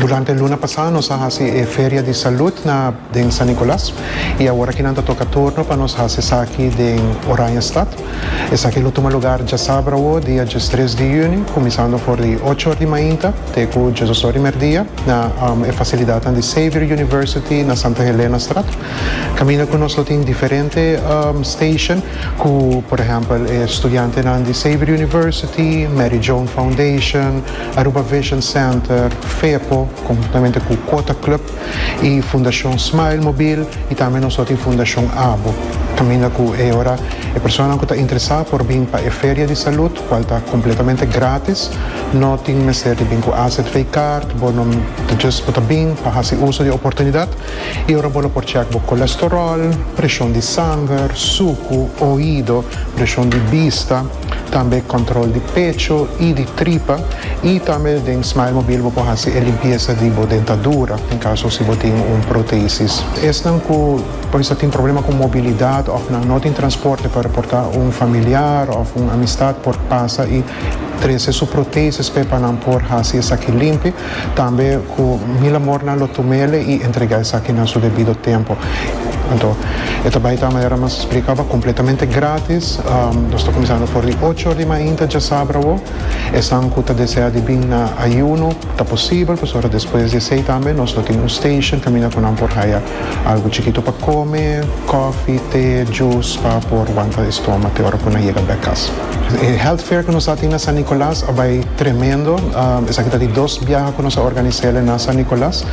Durante e luna pasá nos a hasi e feria di salud na den San Nicolas i awor aki nan ta toka turno pa nos hasi esaki den Oranjestad. Esaki lo tuma lugar djasabra awor dia diestres di yüni kuminsando for di ocho or di mainta te ku diesdos or di merdia na e fasilidatnan di Xavier University na Santa Helenastraat. Kaminda ku nos lo tin diferente station ku por ehèmpel e studiantenan di Xavier University, Mary Joan Foundation, Aruba Vision Center, Fepo, conjuntamente cu Quota Club y Fundacion Smile Mobil y tambe nos lo tin Fundacion Abo. Caminda cu e ora e personanan cu ta interesa por bin pa e feria di salud cual ta completamente gratis. No tin mester di bin cu azv card, bo no ta just bo ta bin pa haci uso di e oportunidad y ora bo lo por check bo colesterol, presion di sanger, sucu, oido, presion di bista. Tambe control di pecho y di tripa y tambe den Smile Mobil bo por haci e limpieza di bo dentadura en caso si bo tin un protesis. Esnan cu por esta tin problema cu mobilidad of nan no tin transporte pa reporta un familiar of un amistad por pasa y trece su protesis pe pa nan por haci esaki limpi. Tambe ku mil amornan lo tum'é el i entregá esaki na su debido tempu. Anto e ta bai ta manera mas splikaba kompletamente grátis. Nos ta kuminsando for di ocho or di mainta djasabra awo. Esnan ku ta desea di bin na ayuno ta posibel, pasobra despues di esei tambe nos lo tin un station kaminda ku nan por haya algu chikitu pa kome, kòfi, te, djus pa por wanta e stoma te ora ku nan yega bèk kas. E health fair ku nos a tin na San Nicolas a bai tremendo. Esaki ta di dos biaha ku nos a organis'é el na San Nicolas.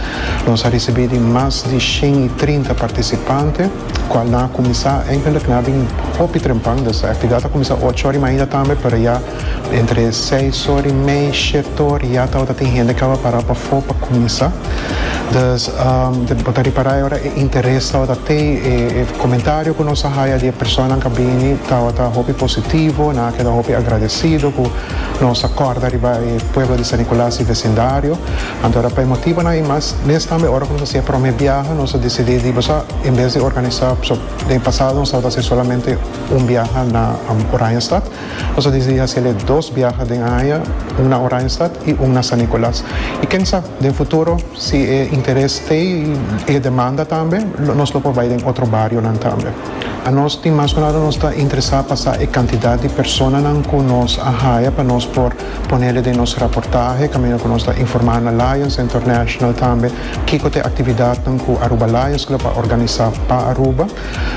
Nos a risibí di mas di shen i trinta partisipante, kual nan a kuminsá eigenlik nan a bin hopi trempan. E aktividat a kuminsá ocho ora i mainda tambe, pero ya entre seis ora i mei, shete ora ya tabata tin hende ku a pará pafó pa kuminsá. Dus bo ta ripará e ora e interes tabata te, e komentario ku nos a haya di e personanan ku a bini tabata hopi positivo, nan a keda hopi agradesido ku nos a kòrda riba e pueblo di San Nicolas i vesindario. Anto ora pa e motibonan i mas, mes tambe ora ku nos a hasié e promé biaha nos a disidí di boso en bes di organisá, paso den e pasado nos tabata hasié solamente un biaha na Oranjestad, Nos a disidi hasel'é dos biaha den aña, un na Oranjestad i un na San Nicolas. I ken sa, den futuro si e interes stay i e demanda tambe, nos lo por bai den otro barionan tambe. A nos tin mas ku nada nos ta interesá pa sa e kantidat di personanan ku nos a haya pa nos por ponel'é den nos raportahe kaminda ku nos ta informá na Lions International tambe kiko ta e aktividatnan ku Aruba Lions Club a organisá pa Aruba.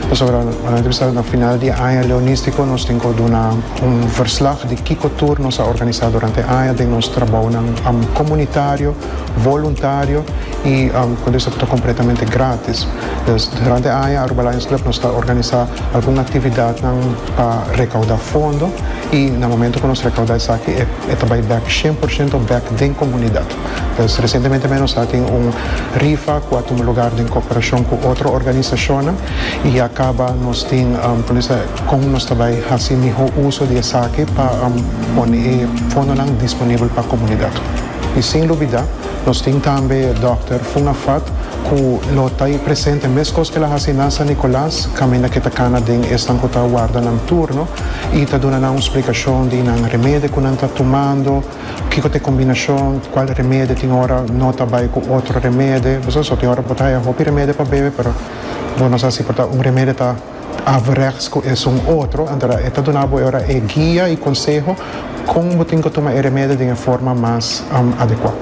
Pasobra nan ta bisa na final di e aña leonístiko nos tin ku duna un verslag di kiko tur nos a organisá durante e aña den nos trabounan komunitario, voluntario i kon ta bisa ku ta kompletamente grátis. Pues durante e aña Aruba Lions Club nos ta organisá algun aktividatnan pa rekaudá fondo i na momentu ku nos rekaudá esaki e ta bai bèk shien por shento bèk den komunidat. Pues recientemente mei nos a tin un rifa cu a tuma lugar den cooperacion cu otro organisacionnan y ya caba nos tin como se dice con nos ta bay haci miho uso di esaki pa pone e fondonan disponible pa comunidad y sin lubida nos tin tambe Doctor Fungafat cu lo ta presente mescos cu el a haci na San Nicolas caminda que ta cana den esnan cu ta warda nan turno y ta duna nan un splicacion di nan remedi cu nan ta tumando. Kiko ta e kombinashon? Kual remedie tin ora no ta bai ku otro remedie? Bo sa aso, tin ora bo ta haya hopi remedie pa bebe, pero bo no sa si por ta un remedie ta averechts ku esun otro. Anto e ta duna bo e ora e guia i konseho kon bo tin ku tuma e remedie den e forma mas adekua.